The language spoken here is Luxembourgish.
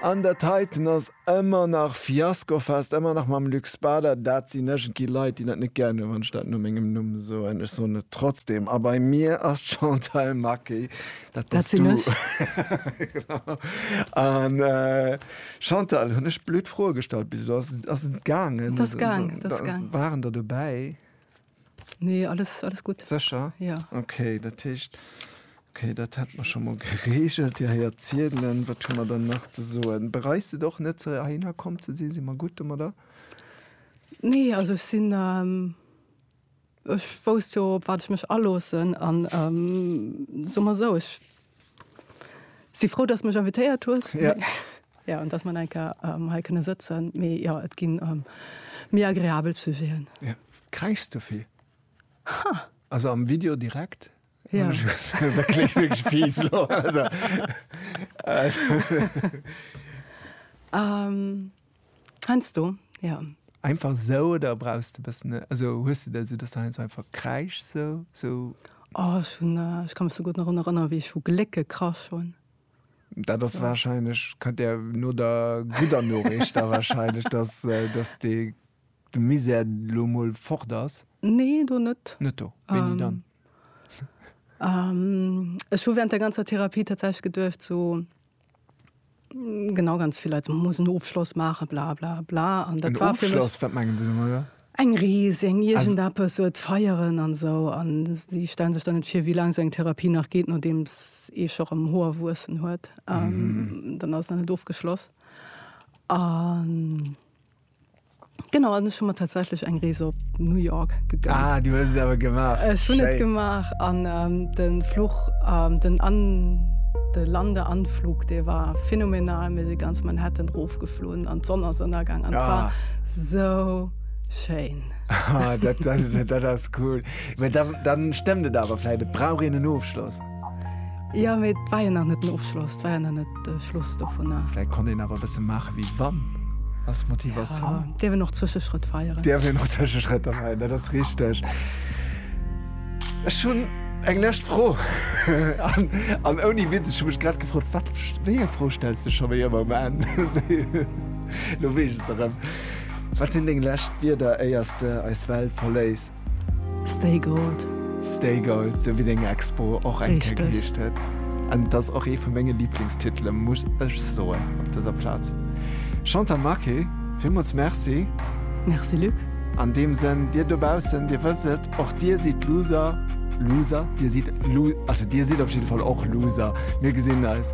An der Titan ass ëmmer nach Fiaskofest, ëmmer nach mam Luc Spader. Dat sinn ëgentgi Leit, déi dat net gären hunn, wann ech dat no mengem Numm soen. Ech soen et trotzdem. A bei mir ass d'Chantal Maquet. Dat bass du. Dat sinn ech. An Chantal, hunn ech blöd Froe gestallt bis elo? Ass et gaangen? Et ass gaangen. Waren der dobäi? Nee, alles, alles gutt. Sécher? Ja. Okay, dat heescht, okay, dat hätte mer scho mol geregelt. Dir héiert ziedelen. Wat hu mer dann nach ze soen? Bereist et och net, ze heihinner komm ze sinn? Si mer gutt domadder? Nee, also ech sinn, ähm, ech wousst jo, op wat ech mech aloossen an, ähm, soe mer esou, ech Si frou dass mech invitéiert hues. Ja. Ja an dass man enke ähm, hei kënne sëtzen. Mee ja et ginn ähm, méi agreabel Sujeten. Ja. Kräichs du vill? Ha. Also am Video direkt? Ja. da klingt wirklich fies. Also. ähm, Heinsdo, jo. Einfach esou oder brauchs de e bëssen, also hues de dat esou, dass de heinsdo einfach kräischs esou, esou? Oh, ech hunn, ech ka mech souguer nach drun erënneren, wéi ech vu Gléck gekrasch hunn. Dat ass wahrscheinlech, kënnt där no der gudder Noriicht da wahrscheinlech, dass, dass dee, de Misär elo emol fort ass. Nee, do net. Net do. Wéini dann? Ech hu während der ganzer Therapie tatsächlech geduecht, esou. Genau, ganz vill Leit muss en Ofschloss maachen, bla bla bla. An dat war fir mech wat mengen se oder? Eng Rees, eng iergend eppes, et feieren an esou. An si stellen sech dann net vir, wéi laang esou eng Therapie nach geet, nodeems ee scho rëm Hoer wuessen huet. Dann ass et nach net ofgeschloss. An. Genau an ech hun mat tatsächlich eng Rees op New York gegönnt. Ah, du hues awer gemacht. Ech hun net gemacht an ähm, den Fluch ähm, den an de Lande anflug dee war phänomenal mir si ganz Manhattan rofgeflohen an d'Sonn ass ënnergang an ah. so schéin. Ah, dat, dat, dat ass cool. Dann, dann stemmmt et awer, vielleicht brauch een en Ofschloss. Ja mee et war jo nach net den Ofschloss, et war jo nach net de Schluss dovunner. Vläit konnt een awer e bësse maache wéi wann. Ass d'Motivatioun. Ja, dierf een och Zwëscheschrëtt feieren. Dierf een och Zwëscheschrëtter feieren, dat ass richteg. Ech hunn eng lescht Fro. An, an ouni Witz, ech hu mech grad gefrot, wat, wéi eng Fro stells de scho wéi ëmmer um Enn? Elo weess ech se erëm. Wat sinn deng lescht Wierder, éiers de eis Welt verléiss? Stay Gold. Stay Gold, sou wéi deng Expo och eng Kéier geheescht huet. An et ass och ee vu menge Liblingstitele muss ech soen op dëser Plaz. Chantal Marqué, villmools Merci. Merci Luc. An deem Sënn, Dir dobaussen, Dir wësst et, och Dir sidd Loser, Loser? Dir sidd Lo, also Dir sidd op jidde Fall och Loser. Mir gesinn eis.